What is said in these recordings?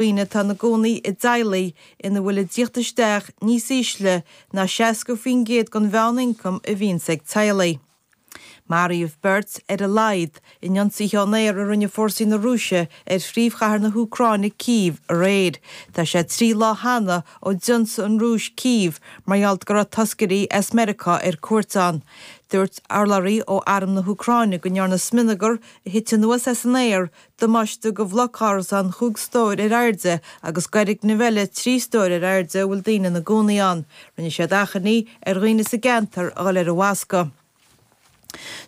Daoine atá ina gcónaí i dteaghlaigh ina bhfuil an teacht isteach níos ísle ná 60% den mheán-ioncam a bhíonns ag teaghlaigh. Maraíodh beirt, ar a laghad, in ionsaithe ón aer a rinne fórsaí na Rúise ar phríomhchathair na hÚcráine, Cív, aréir. Tá sé trí lá cheana ó d'ionsaigh an Rúis Cív mar gheall go raibh toscairí as Meiriceá ar cuairt ann. Dúirt urlabhraí ó Arm na hÚcráine go ndearnadh smionagar a thit anuas as an aer Damáiste go bhloc árasán chúig stór ar airde agus go fhoirgneamh eile trí stór ar airde a bhfuil daoine ina gcónaí ann. Rinne siad achainí ar dhaoine sa gceantar a dhul ar an bhfoscadh.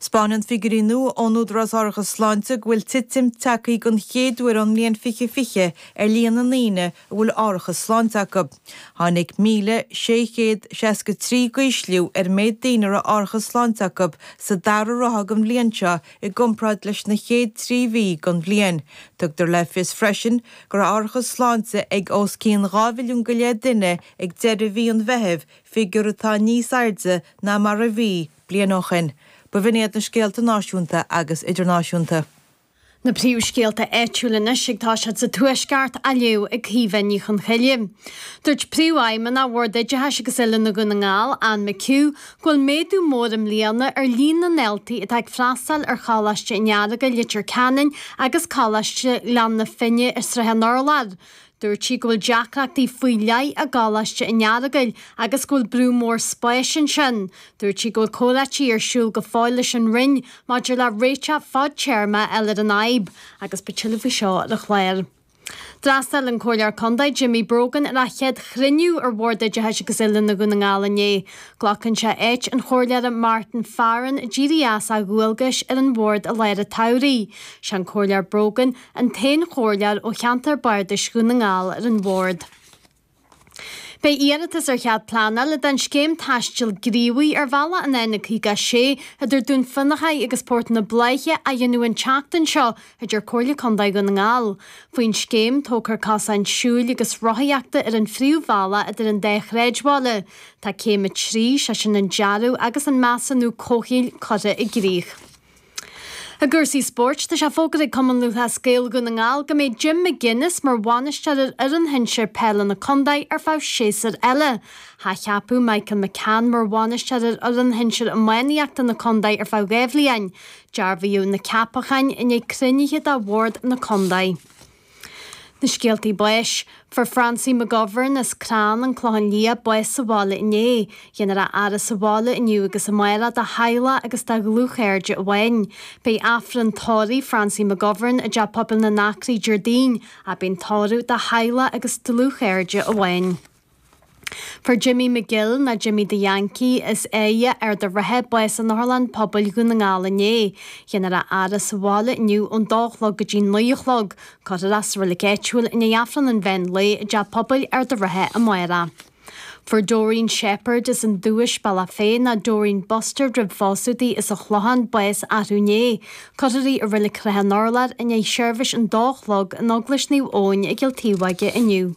Spáineann figiúirí nua ón Údarás Árachais Sláinte go bhfuil titim tagthaí den chéad uair ón mbliain 2020 ar líon na ndaoine a bhfuil árachas sláinte acu. Tháinig 1,663 go ísliú ar an méid daoine a raibh árachas sláinte acu sa dara ráithe den bhliain seo I gcomparáid leis na chéad trí mhí den bhliain, tugtar le fios freisin go raibh árachas sláinte ag os cionn dhá mhilliún go leith duine ag deireadh mhí an Mheithimh, figiúr atá níos airde ná mar a bhí bliain ó shin. B'in iad na scéalta náisiúnta agus idirnáisiúnta. Na príomhscéalta áitiúil anois agus tá siad sa Tuaisceart, á léamh ag Caoimhe Ní Chonchoille. Dúirt Príomhfheidhmeannach Bhord Oideachais agus Oiliúna Dhún na nGall, Anne McHugh, Go bhfuil méadú mór i mbliana ar líon na ndaltaí atá ag freastáil ar Choláiste an Earagail, Leitir Ceanainn agus Coláiste Ghleann na Finne i Sraith an Urláir. Dúirt sí go bhfuil deacrachtaí faoi leith i gColáiste an Earagail agus go bhfuil brú mór spáis ansin. Dúirt sí go bhfuil comhráití ar siúl go fóill leis an Roinn maidir le réiteach fadtéarmach ar an fhadhb agus beidh tuilleadh faoi seo ar an chlár. D'fhreastail an Comhairleoir Condae Jimmy Brogan ar a chéad chruinniú ar Bhord Oideachais agus Oiliúna Dhún na nGall inné. Glacann seisean áit an Chomhairleora Martin Farren a d'éirigh as a dhualgais ar an Bhord i lár an tsamhraidh. Sé an Comhairleoir Brogan an t-aon Chomhairleoir ó cheantar Bardais Dhún na nGall ar an Bhord. Beidh iarratas ar chead pleanála don scéim taistil ghníomhaigh ar bhealach an N56 idir Dún Fionnachaidh agus Port na Bláiche á dhéanamh an tseachtain seo a deir Comhairle Condae Dhún na nGall faoin scéim tógfar cosáin siúil agus rothaíochta ar an phríomhbhealach idir an dá shráidbhaile Tá céim 3, sé sin an dearadh agus an measúnú comhshaoil curtha i gcrích. I gcúrsaí spóirt, tá sé fógartha ag Cumann Lúthchleas Gael Dhún na nGall go mbeidh Jim McGuinness mar bhainisteoir ar fhoireann shinsir peile na contae ar feadh séasúr eile. hAthcheapadh Michael McCann mar bhainisteoir ar fhoireann shinsir iománaíochta na contae ar feadh dhá bhliain. Dearbhaíodh na ceapacháin i ndiaidh cruinniú de Bhord na Contae. Na Scéaltaí Báis. Fuair Francie McGovern as Clann an Clochán Liath bás sa bhaile inné. Dhéanfar a fhaire sa bhaile inniu agus amárach dá theaghlach agus dá dhlúthchairde amháin. Beidh Aifreann Tórraimh Francie McGovern i dTeach Pobail na nAcraí Déardaoin, beidh an tórramh dá theaghlach agus dlúthchairde amháin. Fuair Jimmy McGill, ná Jimmy the Yankee, as Áighe, Ard an Rátha, bás in Otharlann Pobail Dhún na nGall inné. Dhéanfar a fhaire sa bhaile inniu ón dó a chlog go dtí naoi a chlog. Cuirfear é sa reilig áitiúil i ndiaidh Aifreann an Mheán Lae i dTeach Pobail Ard an Rátha amárach. Fuair Doreen Sheppard, as an Dubhais, Bealach Féich, ná Doreen Bustard roimh phósadh di as an Chlochán, bás arú inné. Cuirfear í i reilig Shrath an Urláir i ndiaidh seirbhís an dó a chlog in Eaglais Naomh Eoin i gCill Taobhóige inniu.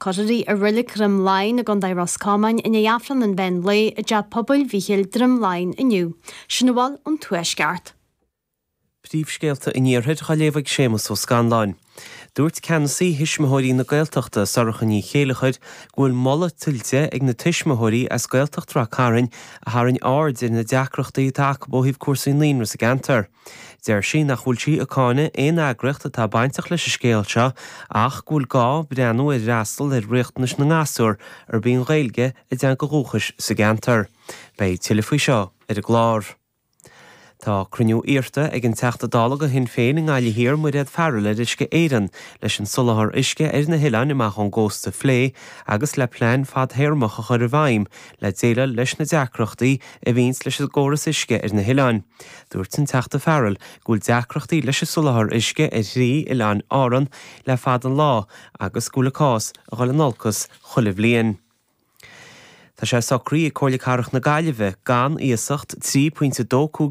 Cuirfear í i Reilig Dhroim Laighin i gContae Ros Comáin i ndiaidh Aifreann an Mheán Lae i dTeach Pobail Mhichíl, Droim Laighin inniu. Sin a bhfuil ón Tuaisceart. Príomhscéalta an Iarthair dá léamh ag Séamus Ó Scanláin. Dúirt ceannasaí Thuismitheoirí na Gaeltachta, Sorcha Ní Chéilleachair, go bhfuil moladh tuillte ag na tuismitheoirí as Gaeltacht Ráth Chairn a tharraing aird ar na deacrachtaí atá acu ó thaobh cúrsaí naíonra sa gceantar. Deir sí nach bhfuil sí ag cáineadh aon eagraíocht atá bainteach leis an scéal seo ach go bhfuil gá breathnú ar fhreastal ar riachtanais na ngasúr arb í an Ghaeilge a dteanga dhúchais sa gceantar. Beidh tuilleadh faoi seo ar an gclár. Tá cruinniú iarrta ag an Teachta Dála do Shinn Féin i nGaillimh Thiar, Mairéad Farrell ar Uisce Éireann leis an soláthar uisce ar na hoileáin amach ón gcósta a phlé agus le plean fadthéarmach a chur i bhfeidhm le déileáil leis na deacrachtaí a bhíonns leis an gcóras uisce ar na hoileáin. Dúirt an Teachta Farrell go bhfuil deacrachtaí leis an soláthar uisce ar thrí oileán Árann le fada an lá agus go bhfuil an cás ag dul in olcas chuile bhliain. Tá sé socraithe ag Comhairle Cathrach na Gaillimhe gan iasacht €3.25